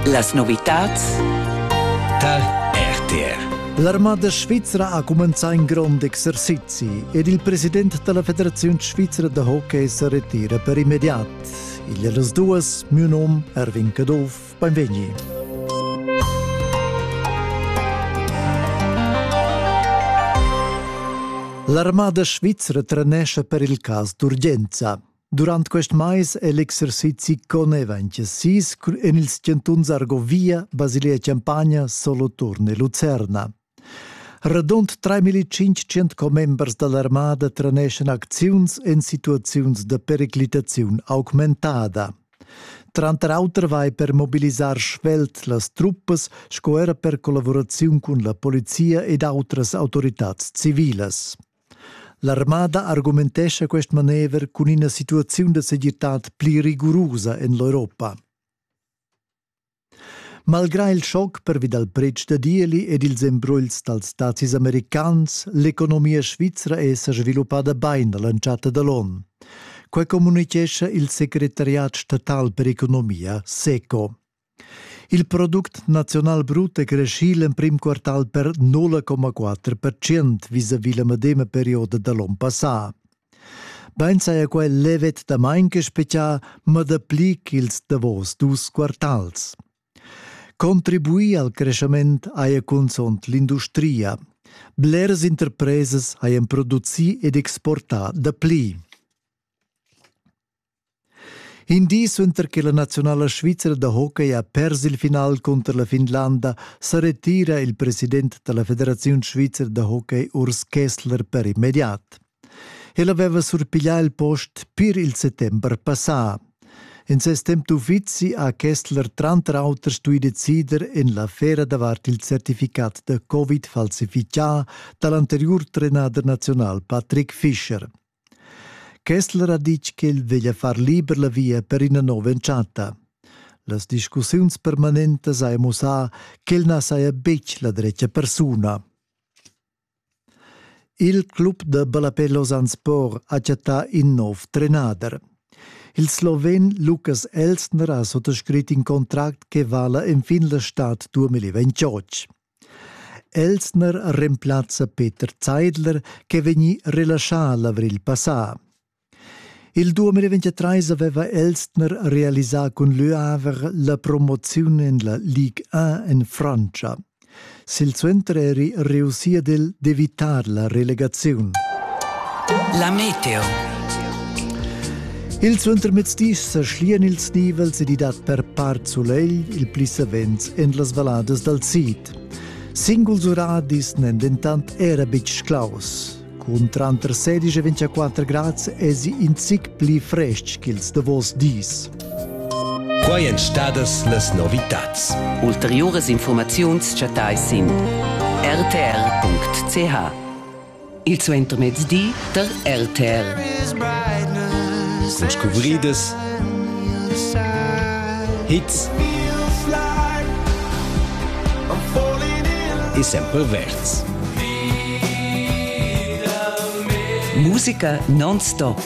Las novitads tar RTR. L'armada svizra ha cumenzà in grond exercizi ed il president da la Federaziun svizra da hockey sa retira per immediat. Igl è las duas, miu num Erwin Caduff, benvegni. L'armada svizra trenescha per il cas d'urgenza. Durant quest mais è l'exercizi connevainch sis en ils chantuns Argovia, Basilia Champagna, Soloturn e Lucerna. Radund 3500 commembers da l'armada treneschan acziuns en situaziuns da periclitaziun augmentada. Tranter auter vai per mobilisar svelt las truppas sco era per collaboraziun cun la polizia ed autras autoritads civilas. L'armada argumentescha quest manever cun ina situaziun da segirtad pli rigurusa en l'Europa. Malgrà il schoc pervi dal pretsch da dieli ed ils embrugls dals dazis americans, l'economia svizra è sa sviluppada bain a l'entschatta da l'onn. Quai communitgescha il secretariat statal per economia, SECO. Il product naziunal brut è creschì l'emprim quartal per 0,4 percent vis-à-vis la medema perioda da l'onn passà. Bain saja quai levet damain che spezià, ma dapli ch'ils davos dus quartals. Contribuì al creschament haja cunzunt l'industria. Blers interpresas hajan producì ed exportà dapli. In di suenter che la naziunala svizra da hockey ha pers il final cunter la Finlanda sa retira il president da la Federaziun svizra da hockey Urs Kessler per immediat. El aveva surpiglià il post pir il settember passà. In ses temp d'uffizi ha Kessler tranter auter stuì decider en l'affera davart il certificat da Covid falsifichà da l'anteriur trenader naziunal Patrick Fischer. Kessler ha ditg ch'el veglia far liber la via per ina nova entschatta. Las discussiuns permanentas hajan mussà ch'el na saja betg la dretga persuna. Il club da ballapè Lausanne Sport ha chattà in nov trenader. Il sloven Lukas Elsner ha suttascrit in contract che vala enfin la stad 2028. Elsner remplazza Peter Zeidler ch'è vegnì relaschà l'avrigl passà. Il 2023 aveva Elsner realisà cun L'Huaver la promoziun en la Ligue 1 en Frantscha. Silsuenter eri reussì ad el d'evitar la relegaziun. La meteo Il suentermezdis sa schlian ils nivels ed i dat per part sulegl il pli savens en las valladas dal sid. Singuls uradis n'èn dentant era betg claus. Cun tranter 16 e 24 grads èsi in zic pli frestg ch'ils davos dis. Quai èn stadas las novitads. Ulteriuras informaziuns chattais sin rtr.ch. il suentermezdi tar RTR. Cun scuvridas, hits e sempre verds. Musica non-stop